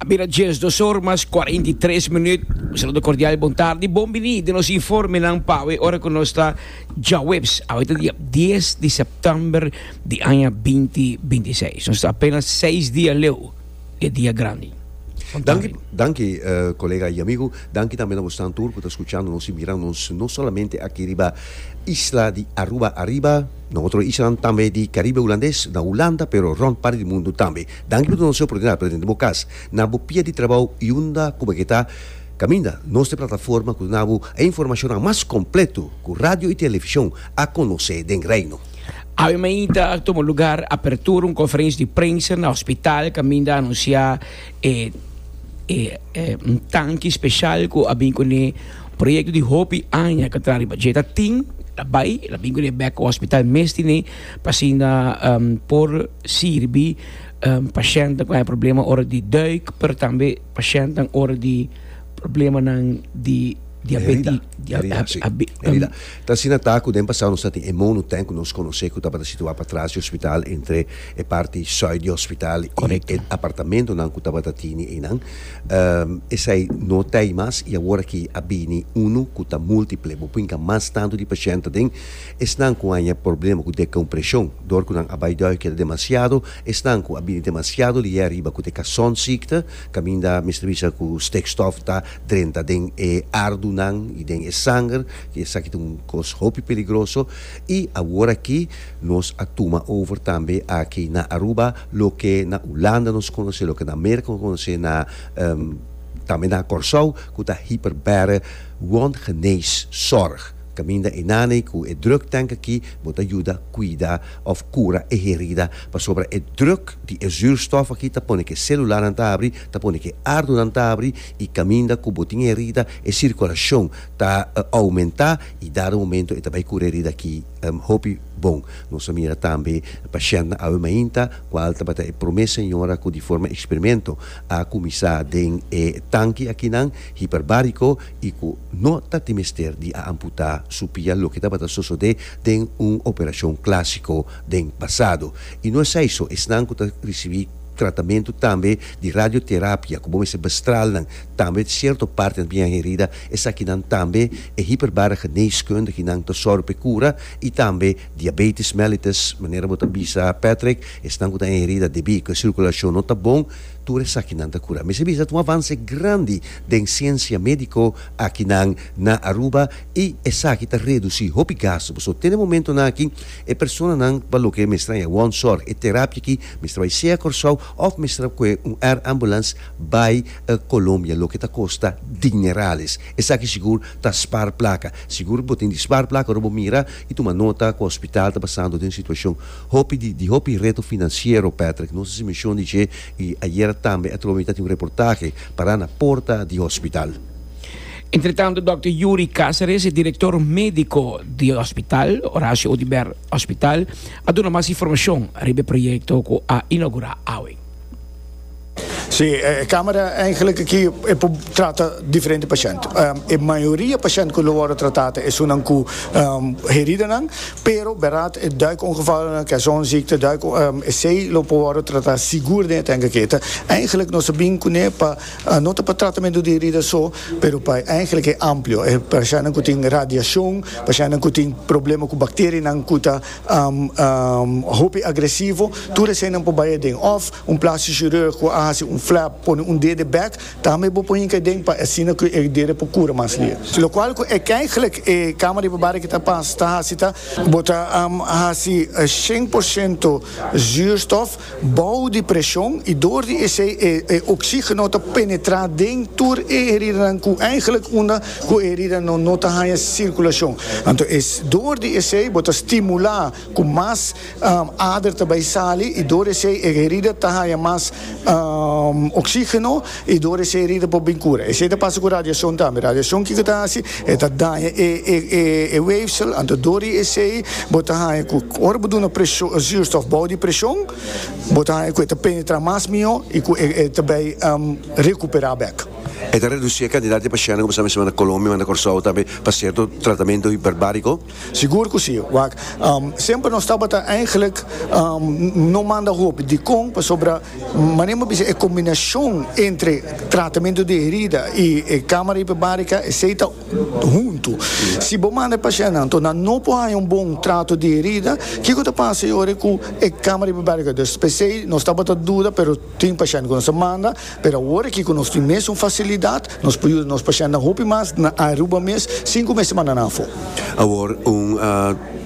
Mira, Jens, dos horas más 43 minutos. Un saludo cordial y buenas tardes. Bom bini de nos informe nan pawe ora que nos está ya webs. Ahorita día 10 de septiembre de año 2026. Nos está apenas 6 días leo de día grande. Danki, danki uh, colega y amigo. Danki también a bostan tur cu ta escuchando nos y mirando nos, no solamente aki riba isla di Aruba arriba, No otro islanan tambe di Caribe Hulandes na Hulanda pero rond parti di mundu tambe. Danki por donacion oportunidad pa tene den bo cas. Na bo pia di trabao y unda cu bo ke ta, caminda nos ta e plataforma cu duna bo e informacionnan mas completo cu radio y television a conoce den Reino. Awemein ta tuma lugar apertura un conferentie di prensa na hospital caminda anuncia e e e un tanki special cu a bin cune. Proyekto di hopi aña ka tra riba dje ta tin, ta bai, el a bin ku e bèk hospital mes tin ei pa asinda por sirbi pashèntnan ku haña problema ora di duik, pero tambe pashèntnan ora di problemanan di diabeti. Herida. Ta asina ta ku den pasado nos a tin e monotank ku nos konosé ku tabata situá pa tras di hospital entre e parti sùit di hospital i e apartamentonan ku tabata tini einan. Esei no ta ei mas i awor aki a bini unu ku ta multiple. Bo binka mas tantu di pashènt aden. Esnan ku a haña problema ku dekompreshon dor ku nan a bai dòrmi keda demasiado, esnan ku a bini demasiado lié ariba ku te kasònziekte, kaminda mester bisa ku stikstof ta drenta den e ardunan i den e sanger, ku esaki ta un kos hopi peligroso. I awor aki. Nos a tuma over tambe aki na Aruba loke na Hulanda nos conoce, loke na America nos conoce, na tambe na Corsou cu ta hiper bere wondgenees zorg. Caminda einan ei cu e druk tank aki bo ta yuda cuida of cura e herida pasobra e druk di e zuurstof aki ta pone cu e celulanan ta abri, ta pone cu e ardunan ta abri y caminda cu bo tin herida e circulacion ta aumenta y dado momento e ta bay cura herida aki. Hopi bon. Nos a mira tambe pa Shenna awe mainta, cual tabata e prome señora cu di forma experimento a cuminsa den e tanki akinan hiperbarico y cu no ta tin mester di a amputa su pia loke tabata sosode den un operacion clasico den pasado. Y no esai so, esnan cu ta ricibi tratamento tambe di radioterapia cu bo mester bestralnan tambe cierto partenan biaherida Esakinan tambe e hiperbare geneeskundiginan ta sòru p'e kura i tambe diabetis mellitus. Manera bo ta bisa Patrick, esnan ku ta enherida debí ku e sirkulashon no ta bon, tur esakinan ta kurá. Mester bisa ta un avanse grandi den siensia médiko akinan na Aruba i esaki ta redusí hopi gastu. Pasobra te den e momentunan aki e personanan pa loke mester a haña wònzòrg, e terapia aki mester bai sea Kòrsou òf mester a kue un air ambulance bai Colombia loke ta costa dinerales esaki sigur ta spar placa sigur bo tin di spar placa ora bo mira y tuma nota cu hospital ta pasando den un situacion hopi di di hopi reto financiero Patrick nos haci mencion di dje y ayera tambe atrobe mi ta tin un reportahe para na porta di hospital. Entretanto Dòkter Yuri Cáceres e Direktor Médiko di Hospital Horacio Audibert Hospital a duna mas informashon riba e proyekto ku a inaugurá awe. Sí, e camera eigenlijk aki e por trata diferente pashènt. E mayoria pashènt ku lo wòrdu tratá ta esunnan ku heridanan, pero bèrad e duikongevallen, kersonziekte, duik, esei lo por wòrdu tratá sigur den e tènk aki. Ta eigenlijk nos a bin kuné pa no ta pa tratamentu di herida so, pero pa eigenlijk e amplio, e pashèntnan ku tin radiashon, pashèntnan ku tin problema ku bakterianan ku ta. Hopi agresivo, tur eseinan por bai aden. Òf un plastic chirurg ku a hasi un flap, pone un dede bèk, tambe bo por hinka aden pa asina ku e dede por kura mas lier. Lokual ku e kèiglèk e kámara di babada ki ta pas ta hasi ta. Bo ta hasi shen por shento zuurstof Bou di presion i dor di esei e oxigeno ta penetra den tur e heridanan ku eigenlik unda ku e heridanan no ta haña sirkulacion. Anto e dor di esei bo ta stimula ku mas ader ta bai sali i dor esei e herida ta haña mas oxigeno. I dor esei herida por bin cura. Esei ta pasa cu radiacion tambe. Radiacion kico ta haci? E ta daña e weefsel, anto dor di esei bo ta haña cu ora bo duna presion, zuurstof bou di presion, bo ta haña cu e ta penetra mas mijo y cu e ta bay recupera bek. E ta reduci e cantidad di pacienten cu bo sa mesma na Colombia, na Corsou tambe pa cierto tratamento hiperbarico. Sigur cu si, wak. Semper nos tabata eigenlijk no manda hopi. Dicon? Pasobra manera mi a bisa e combinacion entre tratamento di herida y e camara hiperbarica esey ta hunto. Si bo manda e pacientnan anto nan no por haya un bon trato di herida, kico ta pasa y ora cu e camara hiperbarica ta desp. Esey nos tabata duda pero tin pacientnan cu nos a manda. Pero awor aki ku nos tin mes un fasilidat, nos por yuda nos pashentenan hopi mas na Aruba mes sin ku mester mandanan afó. Awor un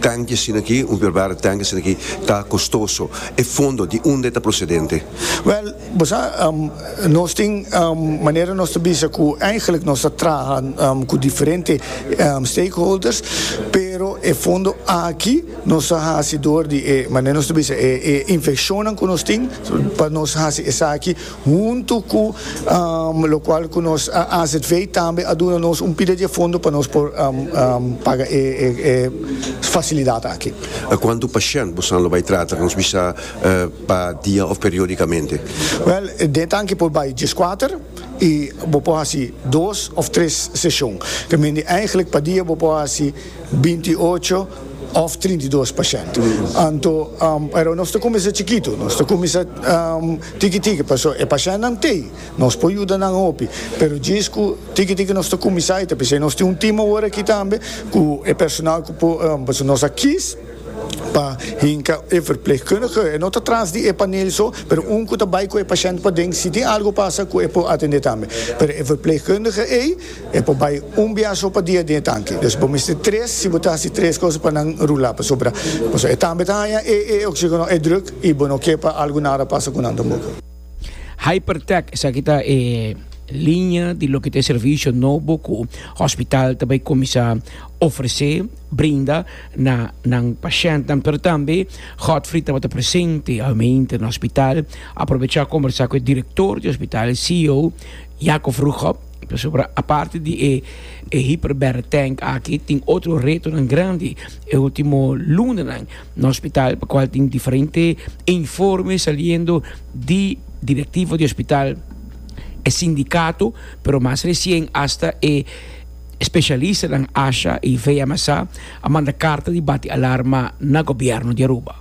tanki asina aki, un verbarde tanki asina aki, ta kostoso. E fondo di unda e ta prosedente? Wèl, bo sa, nos tin manera nos ta bisa ku eindelijk nos ta traha ku diferente stakeholders, pero e fondo aki, Nos a hasi dor di e, manera nos ta bisa, e e infeccionnan cu nos tin, pa nos hasi esaki huntu cu locual cu nos AZV tambe a duna nos un pida di e fondo pa nos por paga e e facilidad aki. Cuantu pashent bosan lo bay trata? Nos bisa pa dia of periodicamente? Wel, den tanki por bay diescuater y bo por hasi dos of tres session. Ta mindi, eigenlijk pa dia bo por hasi binti i ocho òf trinta i dos pashènt. Anto, pero nos ta kuminsá chikitu, nos ta kuminsá tiki tiki, pasobra e pashèntnan t'ei, nos por yuda nan hopi, pero djis ku tiki tiki nos ta kuminsá ita, p'esei nos tin un tim awor aki tambe ku e personal ku por, pasobra nos a kis pa hinka e verplegkundige, e no ta tras di e panel so, pero un ku ta bai ku e pashènt paden, si tin algu pasa ku e por atendé tambe, pero e verplegkundige ei. E por bai un biaha so pa dia den e tanki. Dus bo mester tres, si bo ta hasi tres cosa pa nan rula, pasobra pasobra e tambe ta haña e e oxígeno, e druk, i bo no ke pa algu nara pasa ku nan tampoco. Hypertech, esaki ta e liña di loke ta e servisio nobo ku hospital ta bai kuminsá ofresé, brinda, na nan pashèntnan. Pero tambe Godfrey tabata presente hòminte na hospital. Aprobechá kombersá ku e direktor di hospital, ceo, Jakof Rugop. Pasobra aparte di e e hyperbaric tank aki tin otro retonan grandi e ultimo lunanan na hospital pa cual tin diferente informe saliendo di directivo di hospital, e sindicato pero mas recien hasta e specialistanan asha y VMSA a manda carta di bati alarma na gobierno di Aruba.